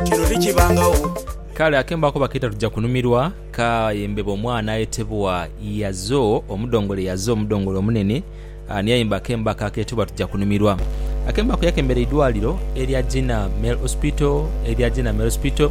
kino tikibangagho. Kale akembo ako bakeeta tuja kunumirwa ka yembeba omwana ayetebwa Yazo omudongole Yazo omudongole omunene ani ayemba akembo ako aketebwa tuja kunumirwa. Akembo ako yakembera eidwaliro erya Gina Male Hospital erya Gina Male Hospital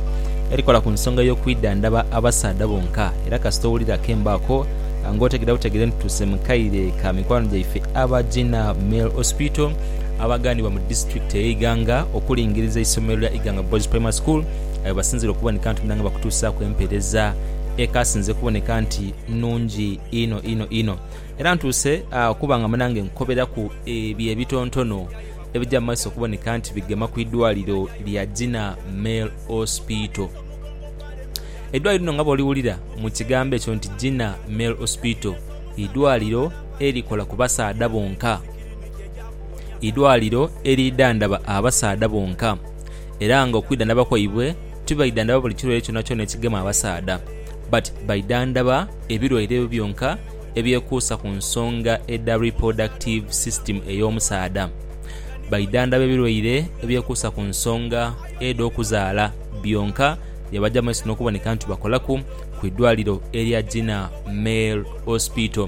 erikola ku nsonga y'okwidhandhaba abasaadha bonka era kasita owulira akembo ako ng'otegera butegere nti tuuse mu kaire ka mikwano gyaife aba Gina Male Hospital abaganibwa mu disitulikiti eye Iganga okulingiriza eisomero lya Iganga Boys Primary School aye basinzire okuboneka nti munanga bakutuusaaku empereza ekasinze kuboneka nti nungi inho inho inho. Era ntuuse okuba nga munange nkoberaku ebyo ebitontono ebija mu maiso okuboneka nti bigema ku idwaliro lya Gina Male Hospital. Eidwaliro lino nga bwoliwulira mu kigambo ekyo nti Gina Male Hospital idwaliro erikola ku basaadha bonka. idwaliro eridhandhaba abasaadha bonka era nga okwidhandhaba kwaibwe tibaidhandhaba buli kirwaire kyonakyona ekigema abasaadha but baidhandhaba ebirwaire ebyo byonka ebyekuusa ku nsonga edha reproductive system ey'omusaadha. Baidhandhaba ebirwaire ebyekuusa ku nsonga edh'okuzaala byonka bye baja mu maiso n'okuboneka nti bakolaku ku idwaliro erya Jinah Male Hospital.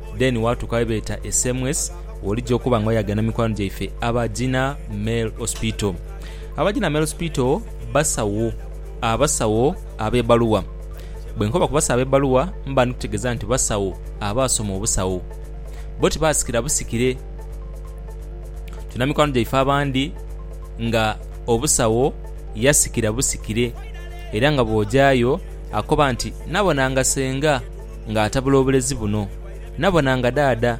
Then watuuka webeeta e Semwes wolija okuba nga oyaga na mikwano gyaife aba Gina Male Hospital. Aba Gina Male Hospital basawo abasawo abebaluwa. Bwenkoba ku basawo abebaluwa mba ndi kutegeza nti basawo abaasoma obusawo. Bo tibasikira busikire. Tulina mikwano gyaife abandi nga obusawo yasikira busikire era nga bwojaayo Akoba nti, Nabona nga senga nga atabula obulezi buno. Nabona nga daada.